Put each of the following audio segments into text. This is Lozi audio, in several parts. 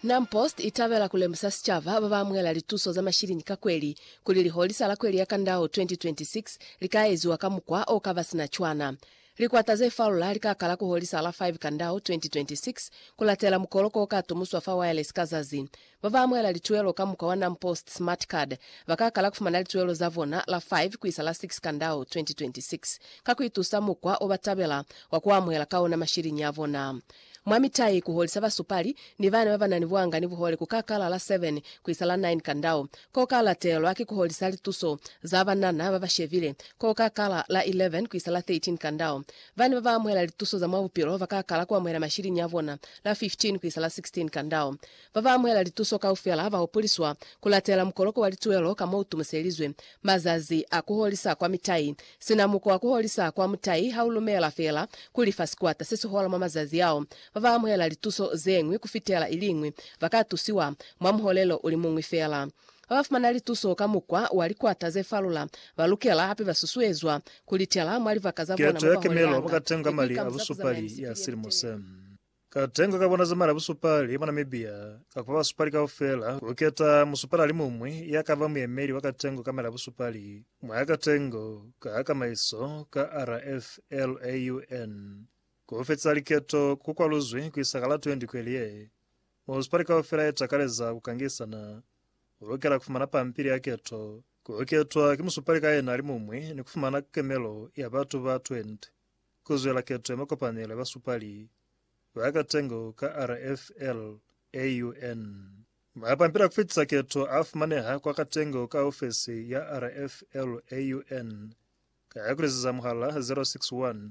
Nam Post i tabela ku lemusa sicaba ba ba amuhela lituso za mashilini ka kweli kuli liholisa la kweli ya Kandao 2026 li ka eziwa ka mukwa o ka ba sina cwana. Likwata ze falula li ka kala ku holisa la 5 Kandao 2026 ku latela mukoloko o ka tumuswa fa Wireless ka zazi Ba ba amuhela lituelo ka mukwa wa NamPost Smart Card ba ka kala ku fumana lituelo za bona la 5 ku isa la 6 Kandau 2026 ka ku itusa mukwa o ba tabela wa ku amuhela ka ona mashiliñi a bona mwa mitai. Ku holisa basupali ni bana ba ba na ni buhanga ni buhole ku ka kala la 7 ku isa la 9 Kandau. Ko ka latelwa ki ku holisa lituso za banana ba ba shebile ko ka kala la 11 ku isa la 13 Kandau. Bana ba ba amuhela lituso za mwa bupilo ba ka kala ku amuhela mashiliñi a bona la 15 ku isa la 16 Kandau. Ba ba amuhela lituso kaufela ba hopoliswa ku latela mukoloko wa lituelo ka mo u tumuselizwe. Mazazi a ku holisa kwa mitai. Sina muko wa ku holisa kwa mutai ha u lumela fela ku lifa sikwata se si hola mwa mazazi ao, ba ba amuhela lituso ze ñwi ku fitela i liñwi ba ka tusiwa mwa muholelo u li muñwi fela. Ba ba fumana lituso ka mukwa wa likwata ze falula ba lukela hape ba susuezwa ku litela mwa libaka za bona Keto mo ya ba kemelo ba holeanga ka tenga ni ku mali a ikamuzakuzanya ni busupali ya sikinyekiti. silimo se. Katengo ka bona zamala busupali mwa Namibia ka kuba basupali kaufela kuketa musupali alimumwi yakaba muyemeli wa katengo kamela busupali mwa katengo ka kamaiso ka RFLAUN. Kufetisa liketo kukwaluzwi kuisa ka la 20 kweli ye. Musupali kaufela yetakaleza kukangisana ulukela kufumana pampili ya keto, kuketwa ki musupali ka yena alimumwi ni kufumana kemelo ya batu ba 20. Ku zwela keto ya makopanelo ya basupali ba ka tengo ka RFL AUN. Mapampili a ku fitisa keto a fumaneha kwa ka tengo ka ofesi ya RFL AUN ka ku lezeza muhala 061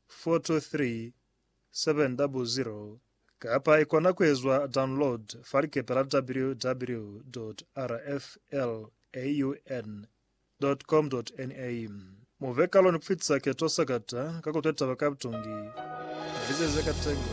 423 700 kapa i kona ku ezwa download fa likepe la www.rflaun.org. Dot-com-dot-NA Mu ve kalo ni ku fitisa keto sakata ka ku twa taba ka butongi. Mu fitise ze ka tengo.